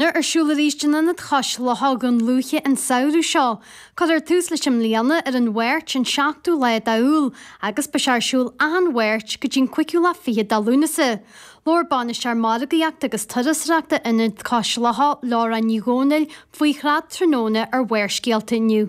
Nuair ar siúl arís in Ionad Cois Locha, Dún Lúiche an samhradh seo, cuirfear tús leis i mbliana ar an Mháirt an 7ú lá d'Iúil agus beidh sé ar siúl achan Mháirt go dtí'n cúigiú lá fichead de Lúnasa. Labhair Bainisteoir Margaíochta agus Turasóireachta Ionad Cois Locha, Laura Ní Dhomhnaill, faoi Trad Tráthnóna ar Bharrscéalta inniu.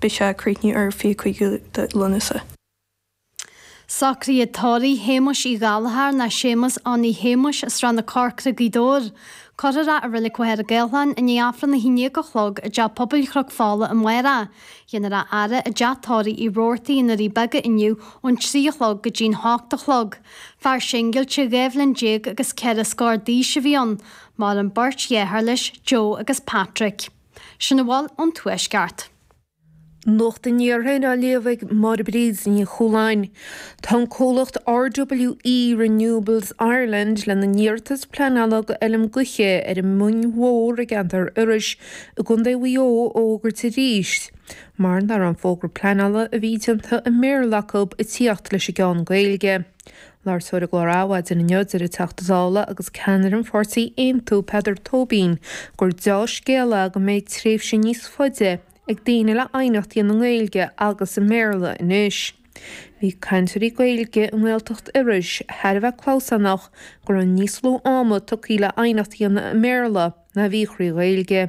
Beidh sé ag críochnú ar fiche cúig de Lúnasa. Socruithe tórraimh Shéamuis Uí Ghallchóir nó Séamus Annie Shéamuis Srath na Corcra, Gaoth Dobhair. Cuirfear é i Reilig Mhachaire Gathlán i ndiaidh Aifreann a haon déag a chlog i dTeach Pobail Chnoc Fola amárach. Déanfar é a fhaire i dTeach Tórraimh Uí Rabhartaigh i nDoirí Beaga inniu ón trí a chlog go dtí'n hocht a chlog. Fear singilte dhá bhliain déag agus ceithre scór d'aois a bhí ann, maireann beirt dhearthár leis, Joe agus Patrick. Sin a bhfuil ón Tuaisceart. Nuacht an Iarthair á léamh ag Máire Bríd Ní Chualáin. Tá an comhlacht RWE Renewables Ireland lena n-iarratas pleanála go Fheilm Gaoithe ar an Moing Mhór i gceantar Iorrais i gContae Mhaigh Eo a fhógairt arís mar nach raibh an fógra pleanála a bhí déanta i mBéarla acu ag tíocht leis an gceann Gaeilge. Ag labhairt dó ar an gclár Adhmhaidin inniu, deir an Teachta Dála agus Ceannaire an Pháirtí Aontú, Peadar Tóibín, gur dea-scéal é go mbeidh tréimhse níos faide ag daoine le aighneacht a dhéanamh i nGaeilge agus i mBéarla anois. Bhí cainteoirí Gaeilge i nGaeltacht Iorrais thar a bheith clamhsánach go raibh níos lú ama tugtha le aighneacht a dhéanamh i mBéarla ná a bhí thrí Ghaeilge.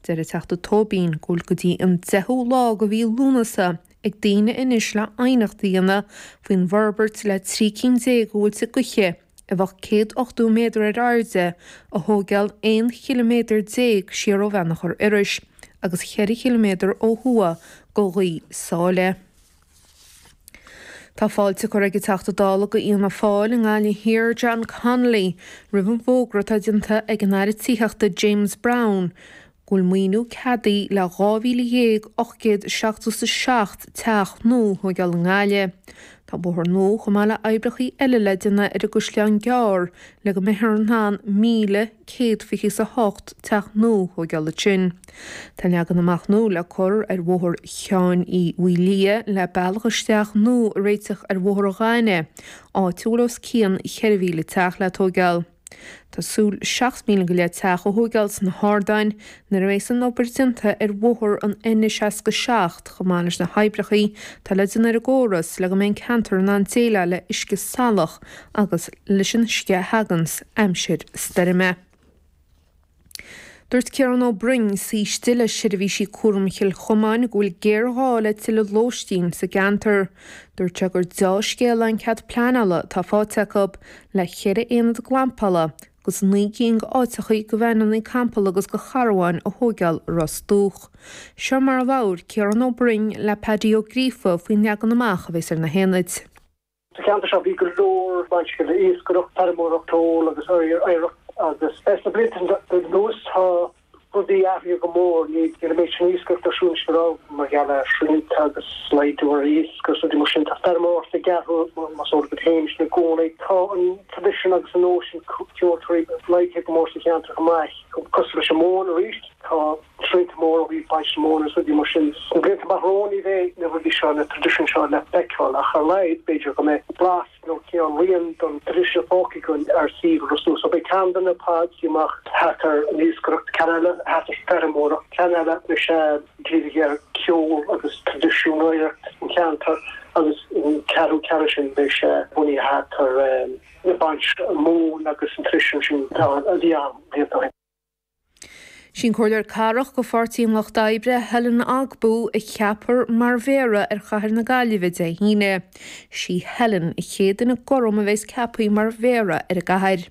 Deir an Teachta Tóibín go bhfuil go dtí an deichiú lá go mhí Lúnasa ag daoine anois le aighneacht a dhéanamh faoin bhforbairt le trí cinn déag de mhuilte gaoithe, a bheadh céad ochtó méadar ar airde, a thóigeáil aon chiliméadar déag siar ó Bheannchor Iorrais agus cheithre chiliméadar ó thuaidh go Ghaoth Sáile. Tá fáilte curtha ag an Teachta Dála go Fhianna Fáil i nGaillimh Thiar, John Connolly, roimh an bhfógra atá déanta ag an Aire Tithíochta James Browne, go bhfuil maoiniú ceadaithe le 12,877 teach nua a thóigeáil i nGaillimh. Tá bóthar nua chomh maith le oibreachaí eile le déanamh ar an gCaisleán Gearr le go mbeifear in ann míle céad fiche is a hocht teach nua a thóigeáil ansin. Tá leagan amach nua le cur ar bhóthar Sheáin Uí Mhaoilmhiaigh le bealach isteach nua a réiteach ar Bhóthar an Ghainimh, áit a bhfuil os cionn cheithre mhíle teach le tóigeáil. Tá súil le seacht míle go leith teach a thóigeáil sna hArdáin nuair a bhéas an obair déanta ar bhóthar an N67 chomh maith leis na hoibreachaí atá le déanamh ar an gcóras le go mbeidh an ceantar in ann déileáil le uisce salach agus leis an uisce a thaganns aimsir stoirme. Dúirt Ciarán Ó Broin, Saoiste le Seirbhísí Cúraim Chill Chomáin, go bhfuil géarghá le tuilleadh lóistín sa gceantar. Dúirt sé gur dea-scéal an cead pleanála atá fáite acu le ceithre aonad glampála agus naoi gcinn áiteachaí go d'fheithiclí campála agus go charbháin a thóigeáil i Ros Dumhach. Seo mar a labhair Ciarán Ó Broin le Paidí Ó Gríofa faoin leagan amach a bheas ar na haonaid. Sa cheantar seo bhí go leor baint le iascaireacht, feirmeoireacht, ceol agus oidhreacht agus le na blianta anuas tá rudaí athraithe go mór. Níl an méid sin iascaireacht ar siúl anois a raibh mar gheall ar shrianta agus laghdú ar iasc agus rudaí mar sin. Tá feirmeoireacht ag athrú más eol duit féin sin i gcónaí. Tá an traidisiún agus an nós sin ceoltóirí laghdaithe go mór sa cheantar chomh maith. Cosúil leis an móin arís tá. Athrú mór ó thaobh baint mhóna is rudaí mar sin sna blianta amach romhainn. Ní bheidh na rudaí seo, na traidisiúin seo le feiceáil ach ar a laghad, b'fhéidir, go mbeidh blas nó cineál rian don traidisiún fágtha againn ar suíomh Ros Dumhach. Beidh ceann de na pods mar. Thart ar an iascaireacht, ceann eile thart ar feirmeoireacht, ceann eile beidh sé dírithe ar ceol agus traidisiún, oidhreacht an cheantar agus an ceathrú ceann sin beidh sé bunaithe thart ar baint mhóna agus an traidisiún sin a bhí ann blianta ó shin. Sí'n Comhairleoir Cathrach go Pháirtí an Lucht Oibre, Helen Ogbu, a cheapfar mar Mhéara ar Chathair na Gaillimhe Dé hAoine. Sí Helen an chéad duine gorm a bheas ceapthaí mar Mhéara ar an gCathair.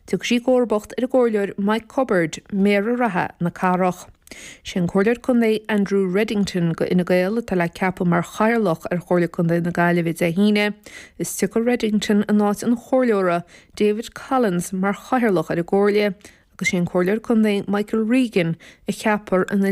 Tiocfaidh sí i gcomharbacht ar an gComhairleoir Mike Cubbard, Méara reatha na Cathrach. Sé an Comhairleoir Contae Andrew Reddington go Fhine Gael atá le ceapadh mar Chathaoirleach ar Chomhairle Contae na Gaillimhe Dé hAoine, is tiocfaidh Reddington in áit an Chomhairleora David Collins mar chathaoirleach ar an gComhairle agus sé an Comhairleoir Contae Michael Regan a cheapfar ina